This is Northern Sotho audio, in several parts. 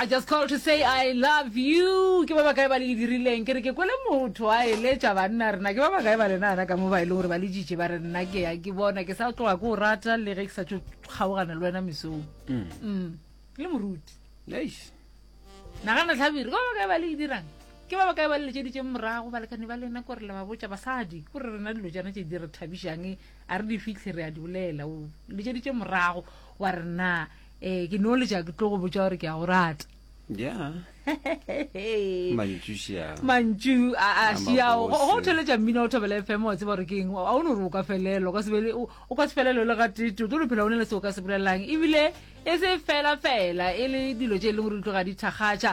I just called to say I love you. Ke ba bakae ba le e dirileng? Ke re ke kwele motho a eletša banna rena. Ke ba bakae ba lena ana ka mo ba e leng gore ba le jitše ba re nna ke ya ke bona ke sa tloga ke o rata le ge ke sa tšo kgaogana le wena mesong. Mm. mm. Le moruti. Eish. Nagana tlhabiri, ke ba bakae ba le e dirang? Ke ba bakae ba le letšeditšeng morago balekane ba lena kore le ba botša basadi kore rena dilo tšana tše di re thabišang a re di fitlhe re a di bolela o letšeditše morago wa rena ee ke no leja ke tlo go botsa gore ke ya go rata yeah mantšu a šiago go theletša mmina o thobela e fm wa tseba gore ke eng a o ne gore o ka felelo o ka se felelo le ga tete o tlo lophela o ne le se o ka se bolelelang ebile e se fela fela e le dilo tše e leng gore di tloga di thakgatša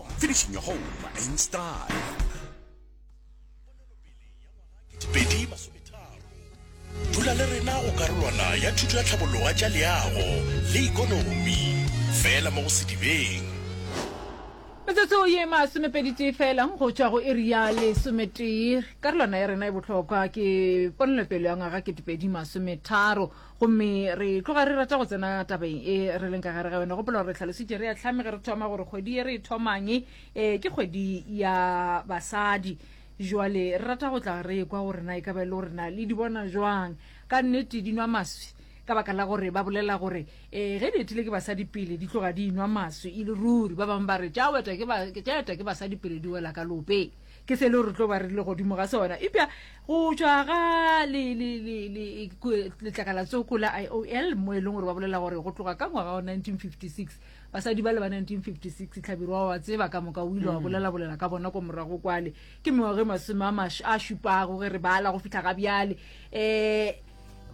Finishing your home in style. Pedi masometharo. Dula le rena go karolwana ya thuto ya tlhabologa tša leago le ikonomi fela mo go Sedibeng. Metsotso ye masomepeditee fela go tšwa go iri ya lesometee. Karolwana ya rena e bohlokwa ke ponelopele ya ngwaga ketepedi masometharo. gomme re tloga re rata go tsena tabeng e re leng ka gare ga yone gopola gore re tlhalositše re ya tlhame ge re thoma gore kgwedi ye re e thomang um ke kgwedi ya basadi jwale re rata go tla re kwa gore na e ka ba e le gore na le di bona jwang ka nnete di nwa maswi ka baka la gore ba bolela gore um ge di etile ke basadi pele di tloga di inwa maswi e le ruri ba bangwe ba re tša eta ke basadi pele di wela ka lopeng ke se lo re tlo ba re le godimo ga sona epja go tšwa ga letlakalatsoko la i o l mo e leng gore ba bolela gore go tloga ka ngwaga wa 1956 basadi ba le ba 1956 tlhabirwa wa tseba ka moka o ile wa bolelabolela ka bona ko morago kwale ke mengwage masome a šupago ge re bala go fitlha ga bjale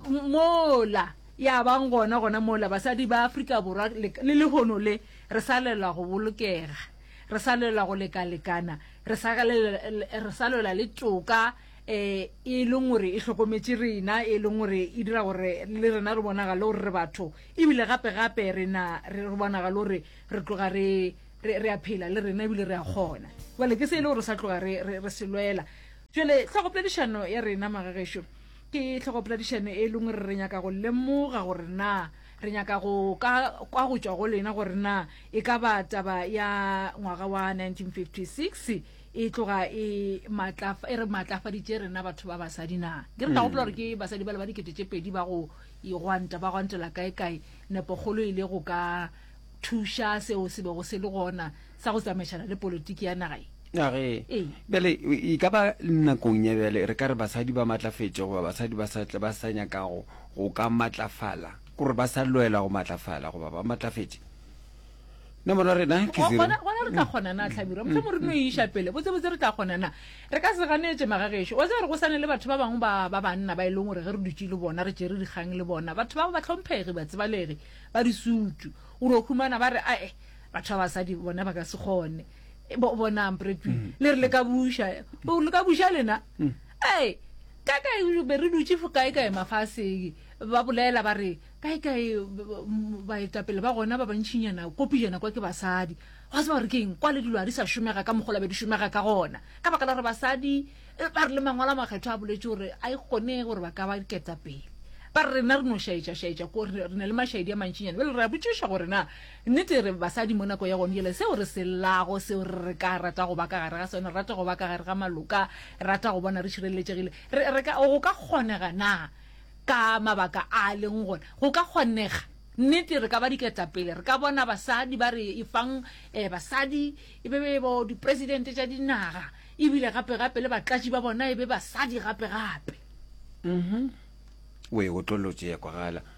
um mola ya bang gona gona mola basadi ba afrika borwa le lehono le re sa lela go bolokega Re sa lwela go lekalekana, re sa, re sa lwela le toka eh, e leng gore e hlokometše rena, e leng gore e dira gore le rena re bonagale gore re batho, ebile gape-gape rena re bonagale gore re tloga re re re a phela le rena ebile re a kgona bale ke se e le gore sa tloga re re re se lwela jale tlhogopoledišano ya rena magagešo ke tlhogopoledišano e leng gore re nyaka go lemoga gore na Re nyaka go ka kwa go tšwa go lena gore na e ka ba taba ya ngwaga wa 1956 e tloga e, e re maatlafaditše rena batho ba basadi na. Ke re ka gopola gore ke basadi bale ba dikete tše pedi ba go igwanta ba gwantela kae-kae, nepokgolo e le go ka thuša seo se bego se le gona sa go tsamaišana le politiki ya naga ye. Age, bjale e ka ba nakong ya bjale re ka re basadi ba matlafetše goba basadi ba sa ba sa nyakago go ka matlafala, gore ba sa lwela go matlafala goba ba matlafetše. Nomoro ya rena ke zero. Gona gona re tla kgona na Tlhabirwa? Mohlomong re no e iša pele. Botse botse re tla kgona na? Re ka se ganetše magagešo. Wa tseba re go sane le batho ba bangwe ba ba banna ba e leng gore ge re dutše le bona re tšere dikgang le bona. Batho ba ba tlhomphegi, batsebalegi, ba disutu. O no humana ba re ae batho ba basadi bona ba ka se kgone e, bo bona ampretwi mm. le re le ka buša o le ka buša lena mm. ee ka kae be re dutse fo kae kae mafaseng ba bolela ba re kae kae baetapele ba gona ba bantšhinyana kopi jana kwa ke basadi ga se ba re keng kwa le dilo a di sa šomega ka mogola be di šomega ka gona ka baka la gore basadi eh, ba re le mangwala makgetho a boletse gore a e kgone gore ba ka ba ketapele ba re rena re no šaetša šaetša ko re ne le mašaedi a mantšinyana bele re a botšiša gore na Nnete e re, basadi mo nako ya gone yela, seo re se llago, seo re re ka rata go ba ka gare ga sone, re rata go ba ka gare ga maloka, re rata go bona re šireletšegile. Re, re ka, go ka kgonega na, ka mabaka a a leng gona, go ka kgonega? Nnete, re ka ba diketapele, re ka bona basadi ba re efang, eh, basadi e be, be bo dipresidente tša dinaga, ebile gape, gape le batlatši ba bona e be basadi gape, gape. Uhum. O e otlolotše ya kwagala.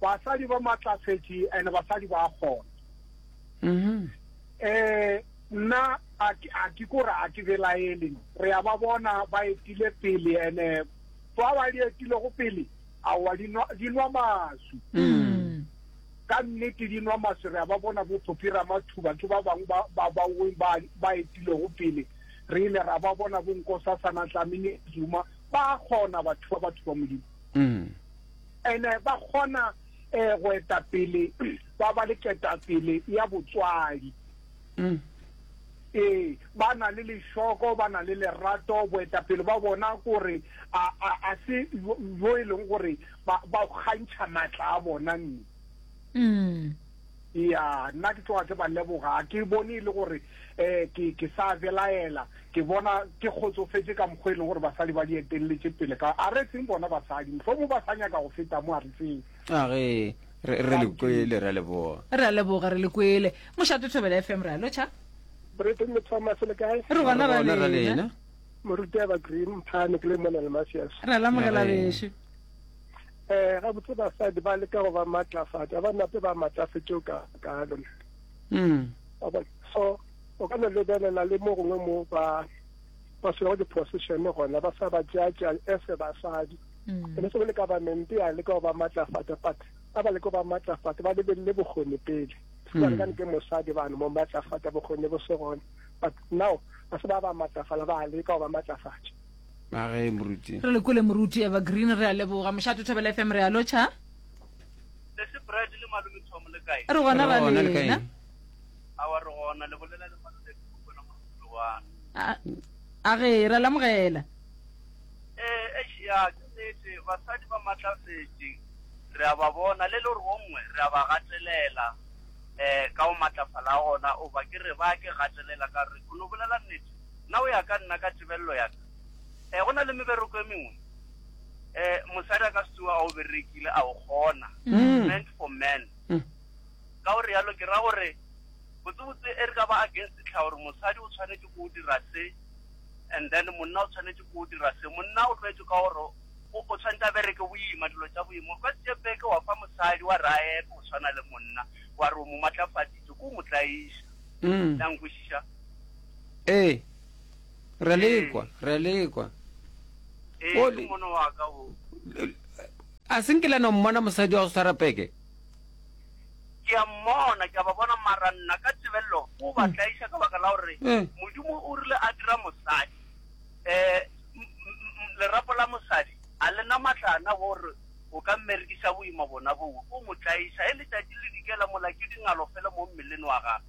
basadi ba matlafetše and basadi ba kgona um nna a ke kore a ke belaele re ya ba bona ba etile pele ene ba ba di etile go pele a wa di nwa di nwa masu mm. ka nnete di nwa masu re ya ba bona bo phopira mathuba ke ba bang ba ba ba ba ba etile go pele re ile ra ba bona bo nkosa sana tlamini zuma ba gona batho ba batho ba modimo ene ba kgona um go etapele ba ba le ketapele ya botswadi ee ba na le lešoko ba na le lerato boetapele ba bona gore a se yo e leng gore ba kgantšha maatla a bona nne Eya nna ke tloga ke ba leboga ga ke bone e le gore um ke ke sa belaela ke bona ke kgotsofetše ka mokgwa e leng gore basadi ba di etelletše pele ka a re seng bona basadi mohlomong ba sa nyaka go feta mo a re seng a ge re re le kwele re a leboga re a leboga re le kwele mošate thobela fm re a lotšha Britain le Thomas le kae re gona ra lena moruti ya ba green phane ke le mona le masias re a lamogela bešo Eh, gabotse basadi ba leka go ba matlafatša ba nape ba matlafetše o ka kalo mm. so o ka no lebelela le mo gongwe mo ba ba swego di-position gona ba sa ba tšeatša ese basadi mm. ene se bole government ya leka go ba matlafatša but ba ba leka go ba matlafatša ba lebelele bokgoni pele mm. ka ke mosadi bano mo matlafatša bokgoni bo se gona but now ba se ba ba matlafala ba leka go ba matlafatša na ge moruti re le kole moruti evergreen re a leboga mošato thobela fm re a lotšha sese brad le malome thomo le kae re gona ba lena a wa re gona le bolela le malome ke bona mo go wa a ge ra lamogela eh e ya ke nete basadi ba matlafetse re a ba bona le le re wongwe re a ba gatelela eh ka o matlafala gona o ba ke re ba ke gatelela ka re go no bolela nete Na o ya ka nna ka tebello ya ka? Eh, go na le mebereko e mengwe eh, mosadi a ka se tsoa a o berekile, a o kgona. Mm. Meant for men. Mm. Ka gore yalo ke ra gore botsebotse e re ka ba against tlha gore mosadi o tshwanetse go dira se and then monna o tshwanetse go dira se. Monna o tlwaetse ka gore o o tshwanetse a bereke boima dilo tsa boima. Ka tse beke wa fa mosadi wa ra e go tshwana le monna wa re o mo matlafaditse ko mo tlaisa. Mm. Tla nkwisisa. Ee, re a le kwa, re a le kwa. Ee, ke Oli. mono wa ka wo. A se nkile no mmona mosadi wa go swara peke? Ke a mmona, ke a ba bona mara nna ka tebelelo o ba tlaiša ka baka la gore Mm. Modimo o rile a dira mosadi. Eh, m- m- m- lerapo la mosadi a le na matlana gore o ka mmerekisa boima bona boo. O mo tlaiša, he letšatši le dikela mola ke dingalo fela mo mmeleng wa gagwe.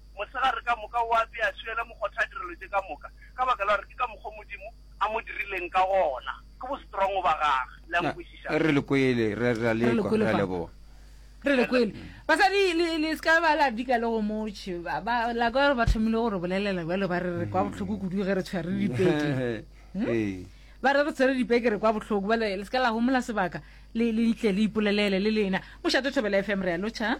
Mosegare ka moka o ape a swiela mokgotha direlo tše ka moka, ka baka la gore ke ka mokgwa wo Modimo a mo dirileng ka gona. Ke bostrongo ba Gage. Le a Na, nkwešiša? re le kwele, re, re a Re le lekwa. kwele Re a fa. leboga. Re le kwele. Basadi, le, le se ka ba la dika le go motšhe. Ba, ba, la kwa ba thomile go re bolelela bjalo, ba re re kwa bohloko kudu ge re tshwere dipeke. Ee. Ba re re tshwere dipeke re kwa bohloko. Bjale le se ka la homola sebaka, le, le ntle le ipolelele le lena. Mošate Thobela FM, re a lotšha.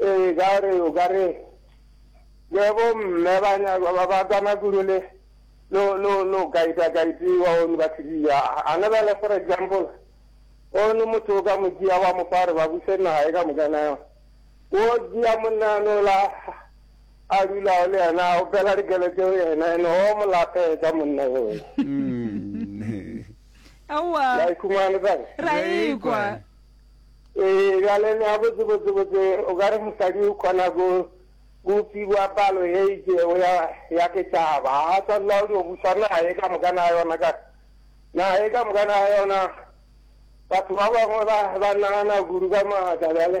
Ee, ka gore o ka re le bomme ba nyaka ba ba tsama kudu le lo lo lo kaita kaitiwa o ba tsidiya a ne ba le for example o ne motho o ka mo dia wa mo fare ba buse naga e ka mo kana o dia monna no la a dula le yena o pela re gele tse yena ene o mo lape ka monna yo mm. awa ra ikwa Ee, bjale nea botsebotsebotse o ka re mosadi o kgona go go fiwa palo ye itsego ya ya setšhaba ga a tshwanela go dio busa naga e ka moka na yona ka naga e ka moka na yona batho ba bangwe ba ba nagana kudu ka maatla bjale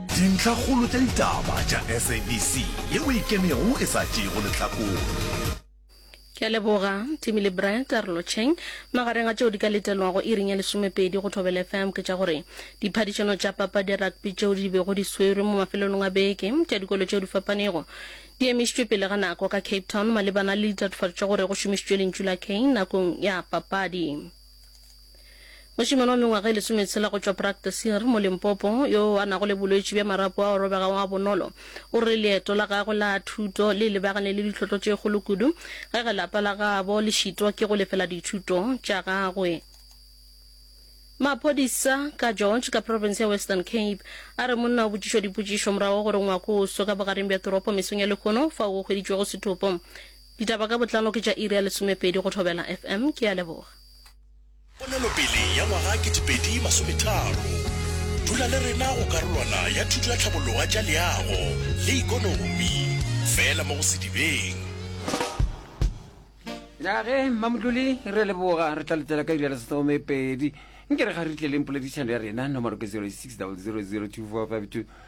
Dintlhakgolo tša ditaba tša SABC ye o e kenego e sa tšeego lehlakore. Ke a leboga, Timmy le Bry, karolocheng. Magareng a tšeo di ka letelwago iring ya lesomepedi go Thobela FM ke tša gore diphadišano tša papadi ya rugby tšeo di bego di swerwe mo mafelelong a beke tša dikolo tšeo di fapanego di emišitšwe pele ga nako ka Cape Town malebana le ditatofatšo tša gore go šomišitšwe lentšu la Kane nakong ya papadi. Mošemane wa mengwaga e lesometshela go tšwa Brakteseer, mo Limpopo, yo a nago le bolwetši bja marapo ao robegago ga bonolo, o re leeto la gagwe la thuto le lebagane le ditlhotlo tše kgolo kudu ge ge lapa la gabo le šitwa ke go lefela dithuto tša gagwe. Maphodisa ka George, ka profense ya Western Cape, a re monna o botšišwa dipotšišo morago ga gore ngwako o swe ka bogareng bja toropo mesong ya lehono fao go hweditšwego sethopo. Ditaba ka botlalo ke tša iri ya lesomepedi go Thobela FM. Ke a leboga. Ponelopele ya ngwaga 2030. Dula le rena go karolwana ya thuto ya tlhabologa tša leago le ikonomi. Fela mo go Sedibeng. Ya ge Mmamotlole re leboga re tla letela ka iri ya lesome pedi nke re ga re tleleng poledišano ya rena nomoro ke 06 000245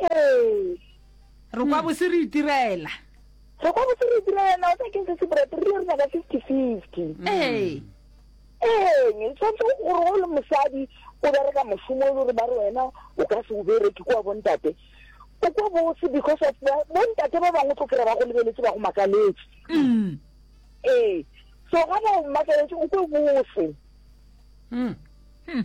ee re kwa bose re itirela re kwa bose re itirela na o sa ke se sebrate re le re nyaka fifty fifty ee eng e tshwanetse gore o le mosadi o bereka mošomo e le gore ba re wena o ka se o bereke kwa bontate o kwa bose because of bontate ba bangwe tlo kry-a ba go lebeletse ba go makaletse mm. ee so ga ba o makaletse o kwe bose mm. Hmm.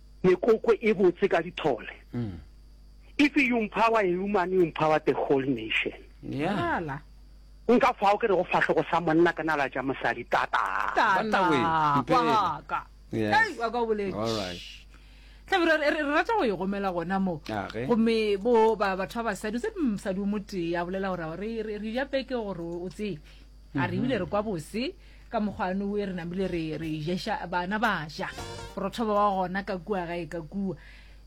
Mekoko e botse ka dithole. Mm. If you empower a woman, you empower the whole nation. Yeah. Nka fao ke re go fahlogo sa monna ka nala tša mosadi tata. Tata. Waka. Hey, waka o boletse. All right. Tlabira re rata go igomela gona mo. Gomme bo ba batho ba basadi se msadi o motee a bolela gore re re ya peke gore o tsee. a re ebile re kwa bose ka mokgwane o e re namile re re jesha bana ba ja borothoba wa gona ka kua ga e ka kua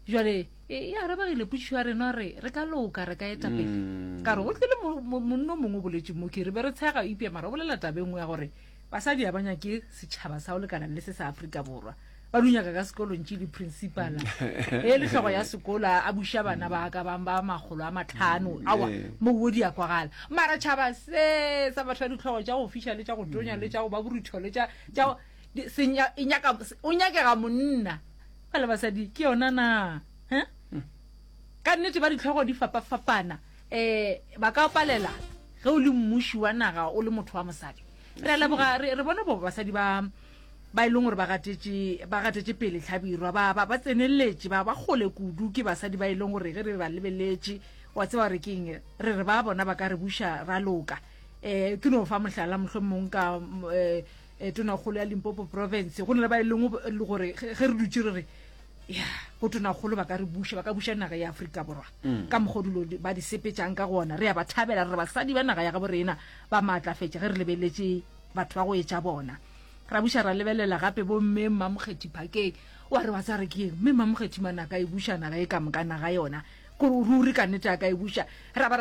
jale e arabagile putšišo ya rena re re ka loka re ka etapele mm. ka re go tlile monna o mongwe o boletseng mo ke re be re tshega ipea mara o bolela tabe nngwe ya gore basadi ya banya ke setšhaba sa o lekanang le se sa aforika borwa ba di nyaka ka sekolong tše di-principala e le tlhogo ya sekolo a buša bana ba ka bang ba makgolo a matlhano awa mouo di ya kwagala mara tšhaba se sa batho ba ditlhogo tša go fiša le tša go tonya le tša go ba borutho le tša o nyakega monna ba le basadi ke yona na ka nnete ba ditlhogo di fapafapana um ba ka palela ge o le mmuši wa naga o le motho wa mosadi re leboga re bone bo basadi ba ba e leng gore ba gatetše pele tlhabirwa ba ba ba tsenelletše ba ba kgole kudu ke basadi ba e leng gore ge re ba lebeletše wa tseba gore ke eng re re ba bona ba ka re buša ra loka um ke no fa mohlala mohlomong ka um eh, eh, tonakgolo ya limpopo province go na le ba e leng gore ge re dutše re re ya go tonakgolo ba ka re buša ba ka buša naga ya aforika borwa mm. ka mogodulo ba di sepetsang ka gona re ya ba thabela re re basadi ba naga ya gabo rena ba maatlafetša ge re lebeletše batho ba go etša bona ra buša ra lebelela gape bo mme mmamokgethi phakeng wa re wa tsa re ke eng mme mmamokgethi mane a ka e buša naga e ka mokana ga yona ruri ka nete a ka e buša ra ba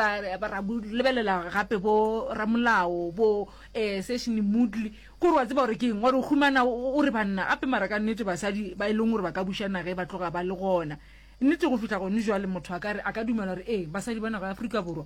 ra lebelela gape bo ramolao bo um eh, session moodley ko re wa tseba gore ke eng wa re o humana o re banna gape mara ka nnete basadi ba e leng gore ba ka buša naga e ba tloga ba le gona nnete go fitlha gone jwale motho a kare a ka dumela gore ee basadi ba naga ya aforika borwa